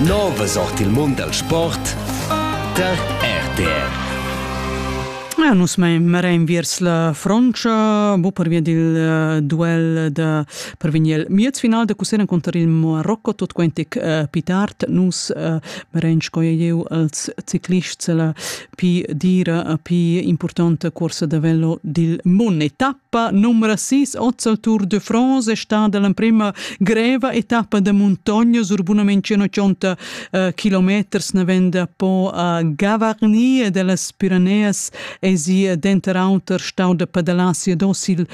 Novas ord il mund dal sport tar RTR. Ah, nus mein marein viers la Frontscha, bu per via dil uh, duel da per vegn il miez final da cusseren conter il Marocco tot quentic uh, pitart nus uh, marein sco jeu als ciclists la Pi dira a pi importanta corsa da velo dil mun. Etappa numero 6, Ozzal Tour de France, è stata l'emprima greva etappa da montagna sur bunament 180 uh, kilometers navenda po a Gavarnie dellas Pireneas e si denter auter stau da padalassi e docil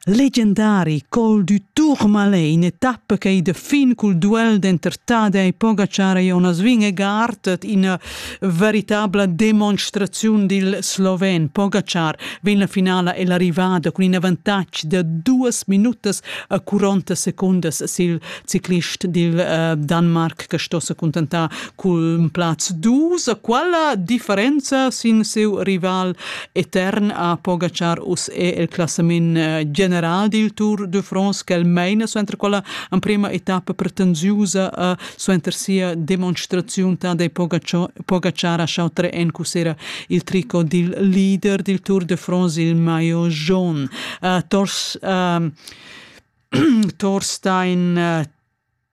Legendari col du Tourmalet in etappa ch'ei da fin cul duel d'entertada ei Pogacar ei onas vin e gartet ina veritabla demonstraziun dil sloven. Pogacar vegn la finala ella rivada cun in avantatg da duas minutas a 40 secundas sil ciclist dil uh, Danmark che sto se cuntentar Cun plaz dus a quella differenza sin siu rival etern a Pogacar us è il classament eh, general dil Tour de France quel meina suenter quella emprema etappa pretensiusa a suenter sia demonstraziun ta dei Pogacar a Chautre en cusera il trico dil leader dil Tour de France il maillot jaune. Uh, tors uh, Torstein uh,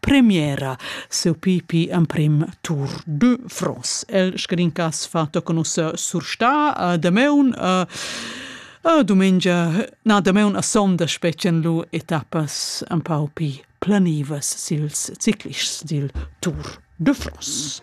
premiera seu pipi emprim Tour de France. El scrincass fatto conoscer sur sta a Dameun a a domengia na Dameun a sonda specen lu etappas un pau pi planivas sils ciclists dil Tour de France.